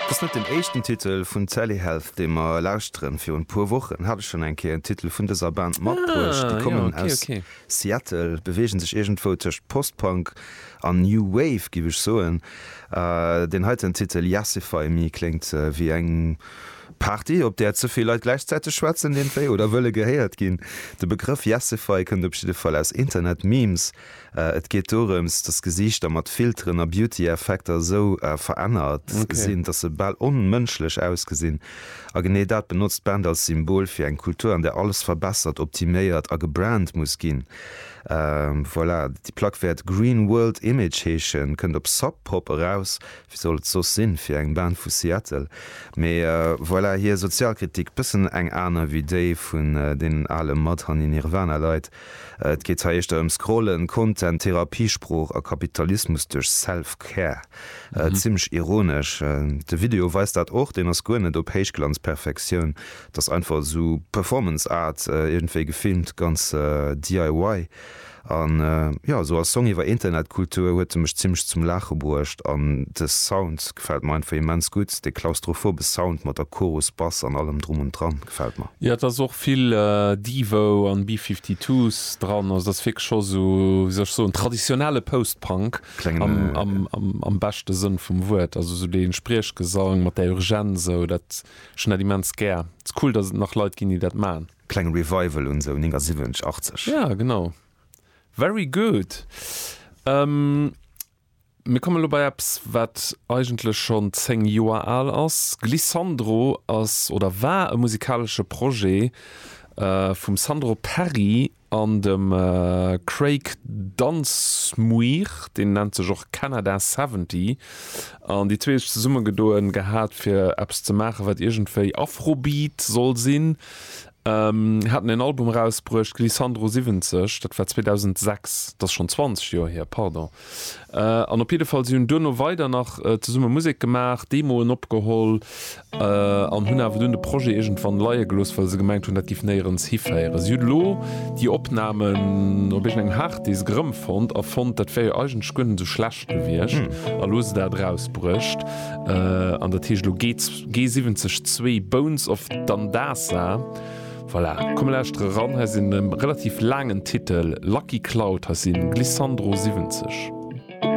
Et ass net den éischten Titel vun Sally Health dee mer lauschteren. Virun e puer Wochen hat ech schonn eng Kéier en Titel vun dëser Band matbruecht. Déi kommen aus Seattle, beweegen sech iergendwou tëscht Post-Punk an New Wave giff ech soen. Deen heiten Titel Yassify Me kléngt wéi eng Party op där ze vill Leit gläichzäiteg schwätzen iergendwéi oder wëlle gehéiert ginn. De Begrëff Yassify kënnt op jidde Fall aus Internet-Memes. Et geet dorëms, dass Gesiichter mat Filteren a Beauty-Effekter esou verännert sinn, dass se bal onmënschlech ausgesinn. A genee dat benotzt d'Band als Symbol fir eng Kultur, an där alles verbessert, optiméiert a gebrandt muss ginn. Voilà, déi Plack wäert Green World Image heeschen, kënnt op Sub Pop eraus. Wéi soll et soss sinn, fir eng Band vu Seattle? Mee voilà, hir Sozialkritik, bëssen eng aner wéi déi vun deenen ale Mudhoney-Nirvana-Leit, Et geet hei éischter ëm Scrollen, Content, Therapiesprooch a Kapitalismus duerch Self-Care. Zimmlech ironesch. De Video weist dat och, deen ass guer net op Héichglanzperfektioun, et ass einfach esou Performance Art, iergendwéi gefilmt, ganz DIY. An jo, esou als Song iwwer Internetkultur huet e mech zimmlech zum Laache bruecht. An de Sound gefält mer einfach immens gutt, dee klaustrophobes Sound mat der Chorus, Bass an allem drum und dran. gefällt mer. Jo et ass och vill Devo an B-52s dran, also dat ass wierklech scho sou wéi soll ech soen traditionelle Post-Punk am beschte Sënn vum Wuert, also sou dee Spriechgesang mat där Urgenz sou dat, ech hunn dat immens gär, ass cool dass et nach Leit ginn déi dat man. Kleng Revival un sou 79, 80. Jo genau, very good. Mir kommen elo bei eppes, wat eigentlech schonn zéng Joer al ass. Glissandro ass oder war e musikalesche Projet vum Sandro Perri an dem Craig Dunsmuir, deen nennt sech och Canada Seventy, an déi zwee hu sech zesummegedoen gehat, fir eppes ze maachen, wat iergendwéi Afrobeat soll sinn. Haten en Album erausbruecht, Glissandro 70, dat war 2006, dat ass schonn 20 Joer hier, pardon. An op jidde Fall, si hunn duerno weider nach zesumme Musek gemaach, Demoen opgeholl an hunn awer dunn de Projet iergendwann leie gelooss, well se gemengt hunn, dat géif néierens hiféieren. Si hunn elo déi Opnamen op iergendengem Harddisk erëmfonnt a fonnt, dat wär jo eigentlech guer net esou schlecht gewiescht a elo hu se dat erausbruecht. An dat heescht, elo geet. G70 zwee Bones of Dandasa. Voilà, komm mer lauschtere ran, hei sinn e relativ laangen Titel, Lucky Cloud, hei sinn Glissandro 70.